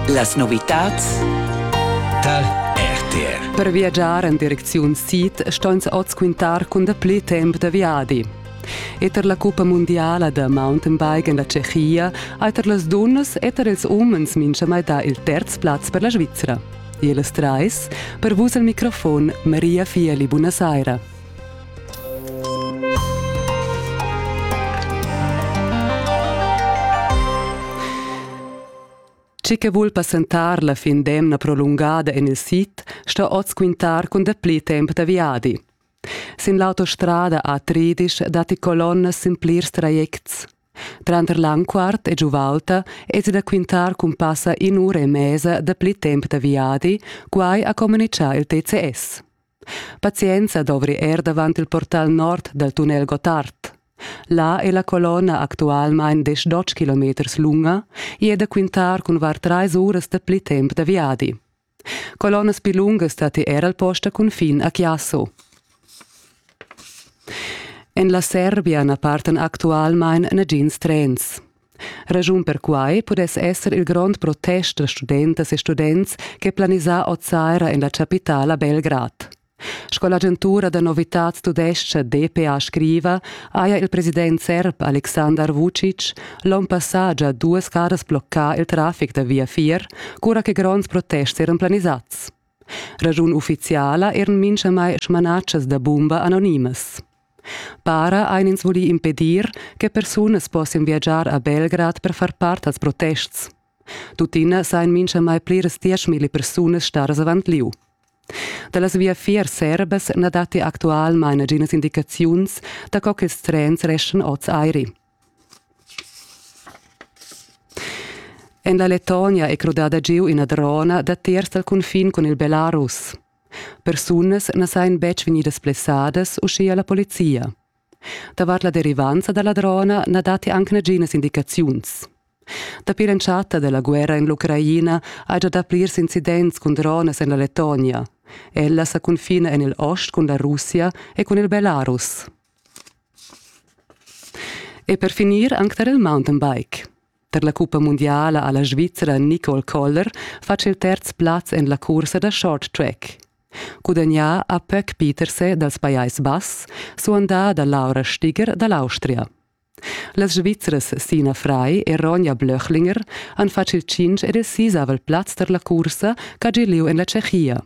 Las novitads tar RTR. Per viagiar en direcziun sid ston oz quintar cun dapli temp da viadi. Eter la cuppa mundiala da mountainbike en la Tschechia ha eter las dunnas eter ils umens minchamai dà il terz plaz per la Svizra. E las trais, per vus al microfon Maria Fieli, buonasera. Chi che vul passentar la fin d'emna prolungada en il sid sta oz quintar cun dapli temp da viadi. Sin l'autostrada A30 datti colonnas sin plirs trajects. Tranter Lanquart e Giuvalta esi da quintar cun passa in'ura e mesa dapli temp da viadi, quai ha communitgà il TCS. Pazienza dovri er davant il portal nord dal tunnel Gottard. Là è la colonna actualmain diesch kilometers lunga e è da quintar cun var trais uras da pli temp da viadi. Colonnas pli lungas datti er al post da cunfin a Chiasso. En la Serbia na partan actualmain nagins trens. Raschun per quai pudess esser il grond protest da studentas e students ch'è planisà oz saira en la chapitala Belgrad. Sco l'agentura da novitads tudescha DPA scriva, haja il president serb Alexander Vucic l'onn passà già duas caras bloccà il traffic da viafier, cura che gronds protests eran planisads. Raschun ufficiala eran minchamai smanatschas da bumba anonimas. Para ein ins voli impedir che persunas possian viagiar a Belgrad per far part als protests. Tuttina sain minchamai pliras dieschmilli persunas staras avant liu. Da las viafiers serbas na datti actualmain naginas indicaziuns da co ch'ils trens reschan oz airi. En la Lettonia è crudada giu ina drona datiers dal cunfin cun il Belarus. Persunas na sajan betg vegnidas blessadas, uschia la polizia. Davart la derivanza da la drona na datti anc naginas indicaziuns. Dapi l'entschatta da la guerra en l'Ucraina hai già dà plirs incidents cun dronas en la Lettonia. Ella sa cunfina en il ost cun la Russia e cun il Belarus. E per finir anc tar il mountainbike. Tar la cuppa mundiala ha la Svizra Nicole Koller fatg il terz plaz en la cursa da short track. Gudagnà ha Pöck Peterse dals Pajais Bass, suandà da Laura Stiger da l'Austria. Las Svizras Sina Frei e Ronja Blöchlinger han fatg il 5 ed il sisavel plaz tar la cursa ch'ha giu lieu en la Tschechia.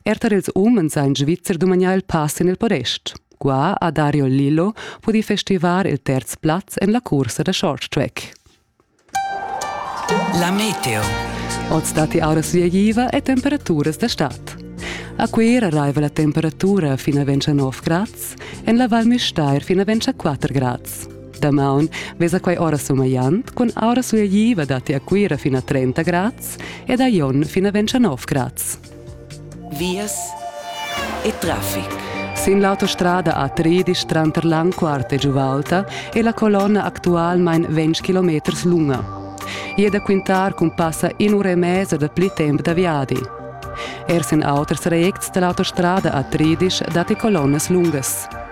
Er tar ils umens ha in Svizzer dumagnà il pass en il podest. Qua ha Dario Lillo pudì festivar il terz plaz en la cursa da short track. La meteo. Oz datti auras viegliva e temperaturas da stad. A Cuira raiva la temperatura fin a 29 grads, en la Val Müstair fin a 24 grads. Damaun vesa quai ora sumagliant cun aura suagliva datti a Cuira fin a 30 grads ed a Jon fin a 29 grads. Vias e traffic. Sin l'autostrada A13 tranter Langquart e Giuvalta è la colonna actualmain 20 km lunga. E da quintar cun passa in ura e mezza da pli temp da viadi. Er sin auters trajects da l'autostrada A13 datti colonnas lungas.